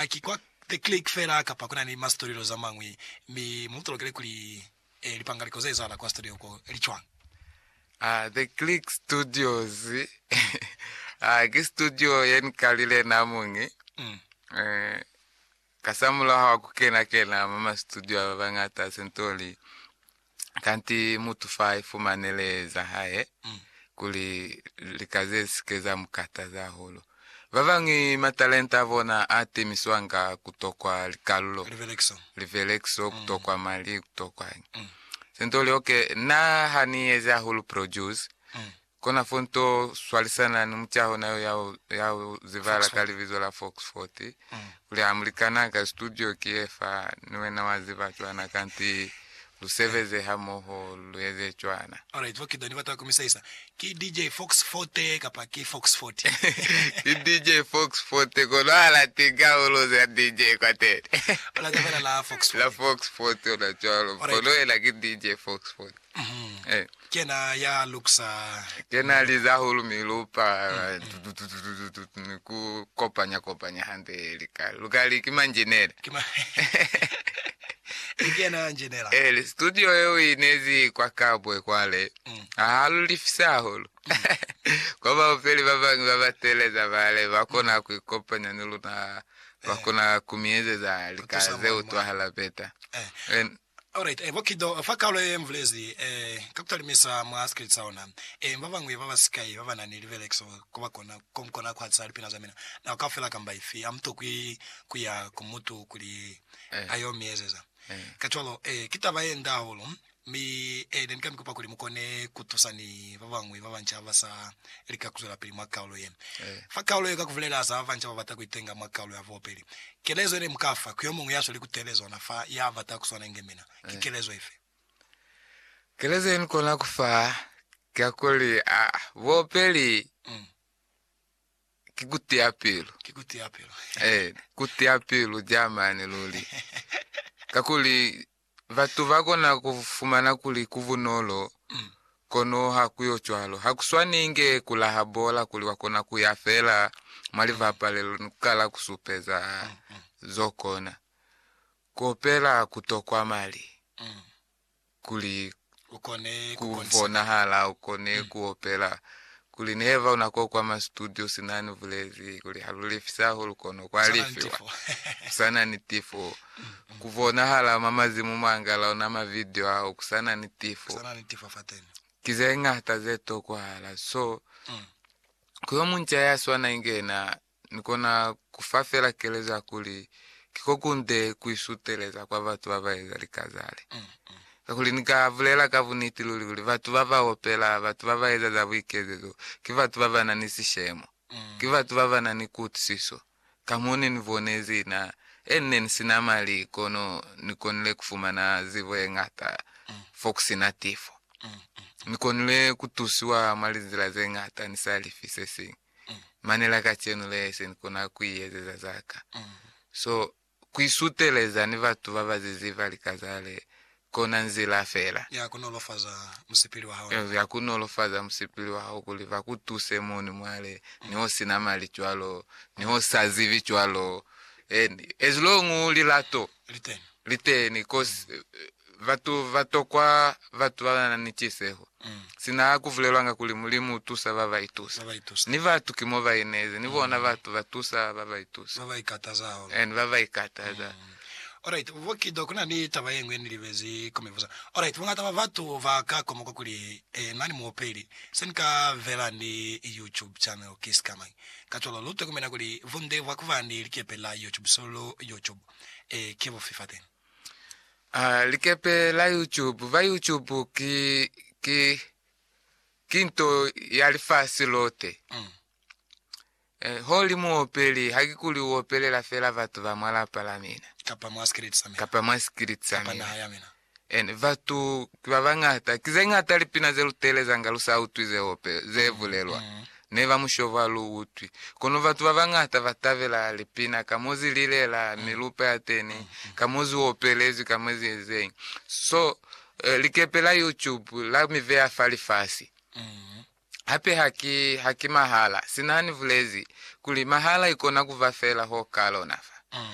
a ki kwa The Click fela kapa ku na ni ma studio za mañwi, mi mu tolokele kuli e, lipangaliko ze ezahala kwa studio ko li cwañi. A, The Click Studios, a, ki studio ye ni kalile na muñi, Mm. e, kasamulaho wa ku kena-kena mwa ma studio a ba bañata, se nto li kanti mutu fa ifumane lee za hae mm. kuli lika ze sike za mukataza hahulu. Ba bañwi matalenta a bona a temiswanga kutokwa likalulo, livelekiso, livelekiso mm. kutokwa mali, kutokwa mm. sento lioke. Na ha ni eze hahulu produce mm. Kona fo nto swalisana ni mutaho na yo ya ho zibala ka libizo la Fox 40, kuli ha mulikana ka studio ki ye fa, ni wena wa ziba cwana, kanti lu sebeze hamoho lu eze cwana. Alright, bo Kido ni bata ku mi sahisa. Ki DJ Fox 40 kapa ki Fox 40? Ki DJ Fox 40, kono ha la tinkahulo za DJ kwateni. Alright, fela la Fox 40. La Fox 40, ona cwalo. Alright. Kono yena ki DJ Fox 40. Eh. Kena ya luksa. Kena liza hulu mi lupa ku kopanya kopanya hande lika. Luka li kima njenela. Kima. Kena njenela. Eh, li studio eo inezi kwa kabwe kwale. Ah, lu lifisa hulu. Kwa ba upeli ba bangi ba ba teleza bale ba kona ku kopanya ni luna ba kona kumiezeza lika ze utwahala beta. Eh. Alright, e, bo kido fa kalo ye mbulezi, e, ka kutalimisa mwa sikili sa ona, e, babañwi baba sikai babana ni libelekiso koba kona, ko mukona kuhatisa lipina za mina nako kaufela kamba ifi. Hamutokwi kuya ku mutu kuli ayo miezeza kacwalo. E, ki taba ye nde hahulu, mi, e, ne nika mikupa kuli mukone kutusa ni babañwi babanca basa lika kuzwelapili mwa kalo ye. Fa kalo ye ka kubulela za babanca babata kuitenga mwa kalo ya bobeli, Kelezo yene muka fa ku yomuñwi ya sweli ku tebe zona fa ya bata ku swana inge mina, ki kelezo ifi? Kelezo ye ni kona ku fa ki kuli, Buopeli ki ku tiya pilu. Ki ku tiya pilu. Ee, ku tiya pilu ja mane luli. Kakuli Batu ba kona ku fumana kuli ku bunolo, kono ha ku yo cwalo. Ha ku swani inge ku laha bola kuli wa kona ku ya fela mwa libapalelo ni ku kala ku supeza z'o kona. Ku opela ku tokwa mali kuli ku bonahala, u kone ku opela. Kuli neheva una ko kwama situdio sina ni bulezi kuli ha lu lefisi hahulu kono kwa lefiwa kusana ni tifo. Ku bonahala mwa mazimu mwangala ona ma video ao kusana ni tifo. Ki ze ngata ze tokwahala. So, ku yo munca ya swana inge yena Ni kona ku fa fela kelezo ya kuli, Ki ko kunde ku isuteleza kwa batu ba ba eza lika zale. Kakuli ni ka bulela ka buniti luli kuli, batu ba ba opela, batu ba ba eza za buikezezo, ki batu ba ba na ni sishemo. Ki batu ba ba na ni kuutwisiso. Ka mo ne ni bonezi, na, e, ne ni si na mali, kono ni konile ku fumana zibo ye ñata fo ku si na tifo. Ni konile ku tusiwa mwa linzila ze ñata ni sa lifi se siñwi. mane la kacenu le se ni kona ku i ezeza za ka. So, ku isuteleza ni batu ba ba zizi ba lika za le, kona nzila fela ya ku nolofaza musipili wa hao, ya ku nolofaza musipili wa hao kuli ba ku tuse moni mwa le, ni ho sina mali cwalo, ni ho sa zibi cwalo, and as long u lilato, liteni cause batu batokwa batu babana ni ciseho mm. sina kuvulelwanga kuli mulimu utusa baba itusa ni batu ki mo baineze ni bona mm. batu batusa baba itusa baba ikataza holo and baba ikataza mm. Alright, Vokido kuna ni taba yengwe ni libezi komivuza. Alright, bongata ba batu ba ka komoka kuli eh, nani muopeli se ni ka vela ni YouTube channel ki sikamang. Ka cholo lu tokomela kuli vunde vwa kuba ni likepe la YouTube solo YouTube. Ee, ki bufi fa teñi? A likepe la YouTube. Ba YouTube ki, ki, ki nto ya lifasi lote. Mm. Eh, ho li muopeli, ha ki kuli u opelela fela batu ba mwa lapa la mina. Kapa mwa sikiliti sa mina. Kapa mwa sikiliti sa mina. Kapa naha ya mina. Ene, Batu ki babañata. Ki zeñata lipina zeluteelezanga lusautwi zeope zebulelwa. Neba mushoba luutwi. Kono batu babañata batabela lipina ka mozililela, milupa yateni, ka moziopelezwi, ka moziezeñi. So, likepe la YouTube la mibeya fa lifasi. Hape haki, haki mahala. Sina nibulezi kuli mahala ikona kuba feela ho kalona fa.